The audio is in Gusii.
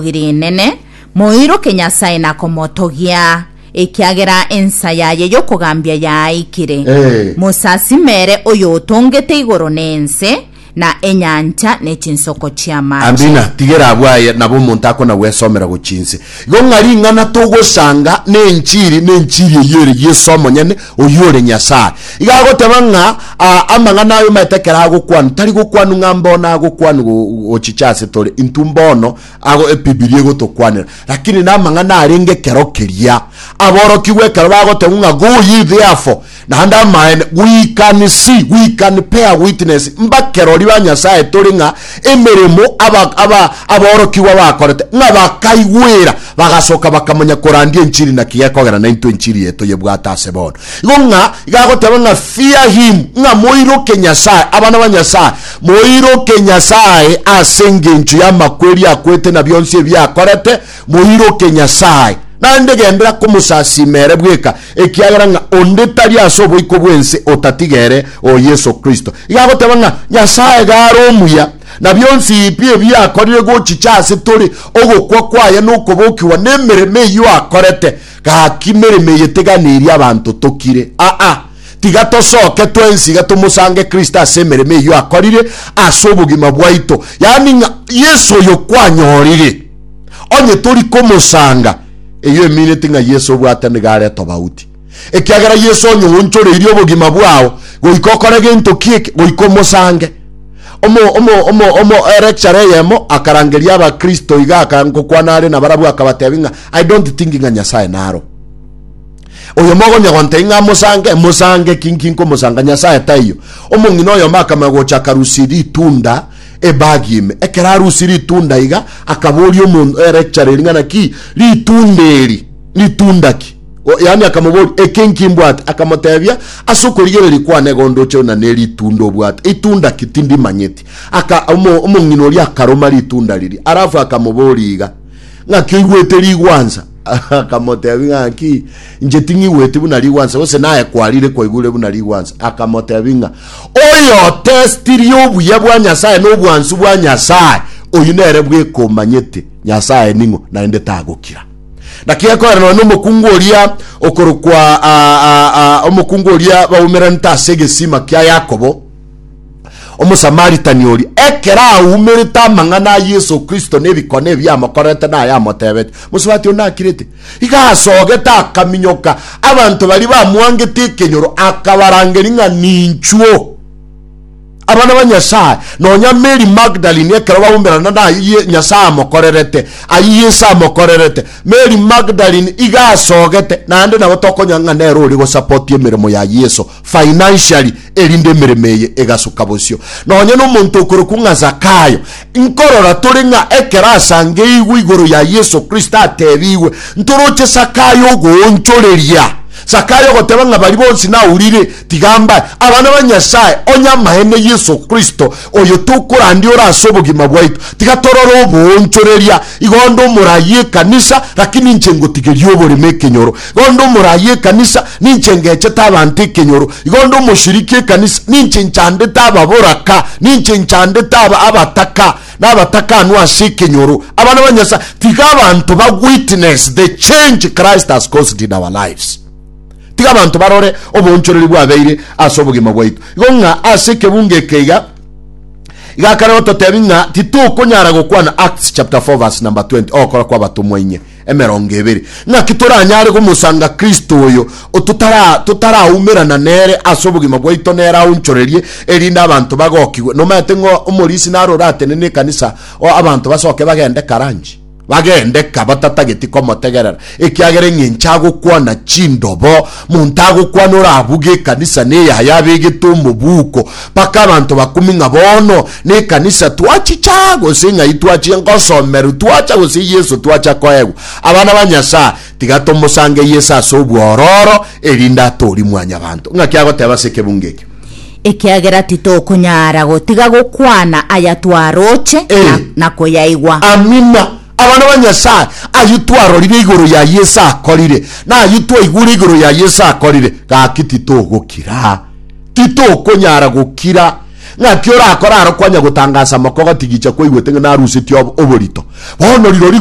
rirogi rinene, moiroke Nyasae na komotogia, ekiagera ensa yaye y'okogambia yaaikire. Eh. Mosasime ere oyotongete igoro na ense, na enyancha ne chinsoko chi'amache. Amina, tigera abwo aye nabo omonto akona gwesomera gochia inse. Igo ng'a ring'ana togosanga n'enchiri, n'enchiri eyio ere Yeso omonyene, oyio ore Nyasae. Iga agoteba ng'a aa amang'ana aye omaete ekero agokwanu, tari gokwanu ng'a mbono agokwanu go- gochicha ase tore intwe mbono ago Ebibilia egotokwanera, lakini namang'ana arenge ekero keria aborokigwa ekero bagoteba ng'a go ye therefore, naende amaene, we can see, we can bear witness, mbakerori ba Nyasae tore ng'a emeremo aborokigwa bakorete, ng'a bakaigwera, bagasoka bakamanya korandia enchiri, naki gekogera naintwe enchiri eye toyebwate ase bono. Igo ng'a iga agoteba ng'a fear him, ng'a moiroke Nyasae, abana ba Nyasae, moiroke Nyasae ase engencho y'amakweri akwete na bionsi ebi akorete, Moiroke Nyasae, naende gendera komosasiima ere bweka, ekiagera ng'a onde tari ase oboiko bw'ense otatiga ere, oo Yeso Kristo. Iga agoteba ng'a Nyasae iga are omuya, na bionsi pi ebi akorire gochicha ase tore, ogokwa kwaye na okobokigwa, na emeremo eyio akorete. Gaki meremo eye teganirie abanto tokire. Aa, tiga tosoke twensi iga tomosange Kristo ase emeremo eyio akorire ase obogima bwaito, yaani ng'a Yeso oyo kwanyorire. Onye tori komosanga, eyio emineti ng'a Yeso obwate nigo are tobauti. Ekiagera Yeso onye oonchoreirie obogima bwao goika okore gento ki'eke, goika omosange. Omo, omo, omo, omo, eh, lecture eyemo akarangeria abakristo iga aka ngokwana are nabarabwo akabatebia ng'a I don't think ng'a Nyasaye naro. Oyomo ogonya gontebia ng'a mosange, mosange, ki nki nkomosanga? Nyasaye taiyo. Omong'ina oyomo akamanya gocha akarusia ritunda ebagi ime. Ekero arusie ritunda iga, akaboria omonto o lecture eria ng'a naki ritunda eri ritunda ki? Yaani akamoboria, eke nki mbwate? Akamotebia, ase okorigereria kwane iga ondoche ng'a neritunda obwate. Itunda ki? Tindimanyeti. Aka, omong'ina oria akaroma ritunda riria, alafu akamoboria iga. Ng'aki oigwete rigwansa? Akamotebia ng'aki, Inche ting'igweti buna rigwansa, gose naye kwarire kwaigure buna rigwansa. Akamotebia ng'a, Oyotestirie obuya bwa Nyasae na obwansu bwa Nyasae, oyio nere bweka omanyete Nyasae ning'o, naende tagokira. Naki gekoera nonya omokungu oria okorokwa ah, ah, ah, omokungu oria baumeranete ase egesima kia Yakobo, Omosamaritani oria, ekero aumerete amang'ana a Yeso Kristo na ebikone ebi amokorerete na aya amotebete, Mosubati one akirete. Iga asogete akaminyoka, abanto baria bamwangete ekenyoro akabarangeria ng'a ninchuo abana ba Nyasae. Nonya Mary Magdalene ekero baumerana na ayio Nyasae amokorerete, ayio Yeso amokorerete, Mary Magdalene iga asogete, naende nabo tokonyora ng'a nere ore gosapotia emeremo ya Yeso. financially erinde emeremo eye egasuka bosio. Nonye nomonto okorokwa ng'a Zakayo, nkorora tore ng'a ekero asangeirwe igoro ya Yeso Kristo atebigwe, Ntoroche Zakayo ogoonchoreria. Zakayo ogoteba ng'a bari bonsi naurire, tiga mbae abana ba Nyasae, onye amaene Yeso Kristo, oyo tokorande ore ase obogima bwaito. Tiga torore oboonchoreria. Igo onde omorayie ekanisa, rakini inche ngotigeria oborimo ekenyoro. Igo onde omoraai ekanisa ninche ngechete abanto ekenyoro, igo onde omoshiriki ekanisa ninche nchandete ababoraka, ninche nchandete aba abataka, na abatakanwa ase ekenyoro, abana ba Nyasae. Tiga abanto ba witness the change Christ has caused in our lives. Tiga abanto barore oboonchoreri bwabeire ase obogima bwaito. Igo ng'a ase ekebungo eke iga, iga akare gototebi ng'a titokonyara gokwana Acts chapter 4 verse number 20, ogokora kw'abatomwa inye. emerongo ebere. Ng'aki toranyare komosanga Kristo oyo totaraumerana nere ase obogima bwaito nere aonchorerie, erinde abanto bagokigwe? Nomaete ng'a omorisi naro oratenene ekanisa o abanto basoke bagende karanchi? Bagende ka batatageti komotegerera, ekiagera eng'encho agokwana chindobo. Monto agokwana orabuge ekanisa neyaye abegete omobuko, mpaka abanto bakuming'a bono. Nekanisa twachicha gose ng'ai twachia ngosomerw twacha gose Yeso twacha koegwa abana ba Nyasaye tiga tomosange Yeso ase obwororo erinde atori mwanyabanto. Ng'aki agoteba ase ekebungo ekio? Ekiagera titokonyara gotiga gokwana aya twaroche na, na koyaigwa. Amina. Abana ba Nyasaye, ayio twarorire igoro ya Yeso akorire, na ayio twaigure igoro ya Yeso akorire, gaki titogokira. Titokonyara gokira. Ng'aki orakore aro kwanya gotangasa moko gotigicha kwaigwete ng'a narusetie oborito. Bono rirorio